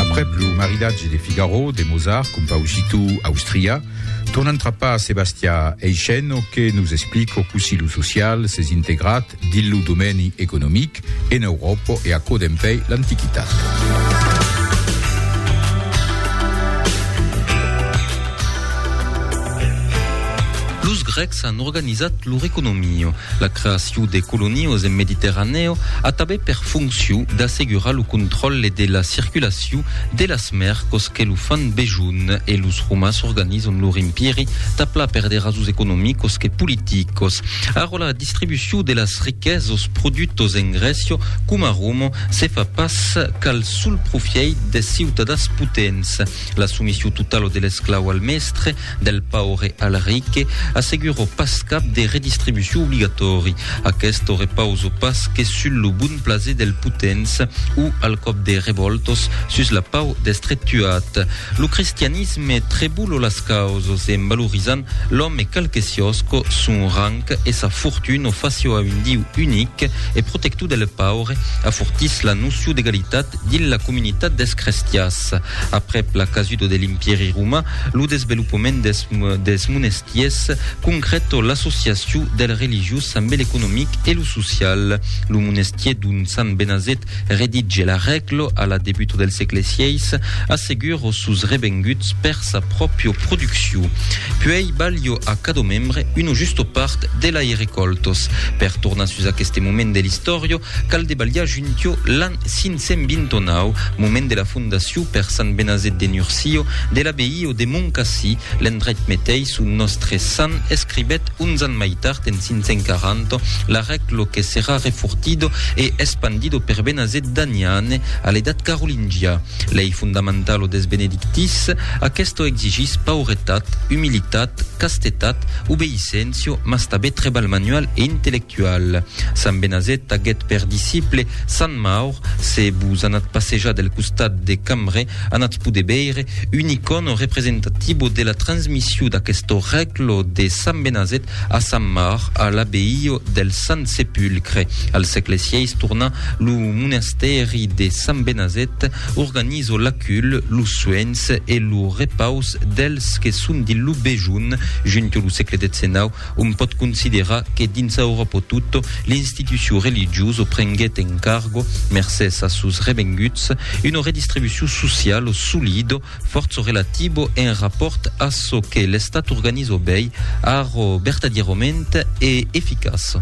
Aprèp lo maridatge de Figaro de Mozart, compausitò austrià, tornan trapar a Sebastià Eisceno que nos explico cossí lo social s'es integrat dins lo domèni economic en Euròpa e aquò dempèi l'antiquitat. S'an organizat lor economio. La creacion de colonios en Mediterranèo a tabé per foncion d'assegurar lo contròlle de la circulacion de las mercos que lo fan besonh e los romans organizan lor empiri tapla per de rasons economicos que politicos. Ara la distribucion de las riquesos produtos en Grècia coma a Roma se fa pas qu'al sol profièit des ciutadans potents. La soumission totala de l'esclau al mèstre Del paure al ric, asseguro pas cap de redistribucion obligatòri. Aquesto repauso pas que sul lo bon plaser del potents o al còp de revòltos sus la pau d'estre tuat. Lo cristianisme trebulo las causos en valorizant l'òme qualque siòsco, son rang e sa fortun o facio a un Diu unic e protector del paure afortís la nocio d'egalitat dins la comunitat dels crestiás. Aprèp la casuda de l'Impèri roman, lo desvelopament dels dels monestiers concrèto l'associacion del religiós ambe l'economic e lo social. Lo monestier d'ont sant Benazet redige l'arrèglo a la debuta del sègle sièis assegura os sos revenguts per sa pròpio produccion. Puèi balha a cadò membre una justa part de lai recoltos. Per tornar sus aqueste moment de l'istòria, Cal debalhar juntiò l'an 529, moment de la fondacion per sant Benazet de Nurcio de l'abbaye de Moncassi, l'endrech metei son nòstre sant escribèt uns ans mai tard en 540 l'arèclo que serà refortido e espandido per Benazet d'Aniane a l'edat carolingia. Lei fondamentalo des benedictis, aquesto exigís pauretat, humilitat, castetat, obeisséncia, mas tabé treball manual e intellectual. Sant Benazet aguèt per disciple Sant Maur, se vos anatz passejar del costat de Cambre, anatz poder veire un icòno representativo de la transmission d'aquesto règlo de Sant Benazet a Sant Maur a l'abbeio del Sant Sepulcre. Al sègle sièis torna lo monastèri de Sant Benazet, organizo l'acul, los suènhs e lo repaus dels que son dins lo bejun. Junto lo sègle 19 Òm pòt considerar que dins Euròpo tot, l'institucion religiosa prenguèt en cargo, mercés as sos revenguts, una redistribucion sociala solida, fòrça relativa en rapòrt a çò que l'Estat organiza bèi, ara, vertadièrament e eficaça.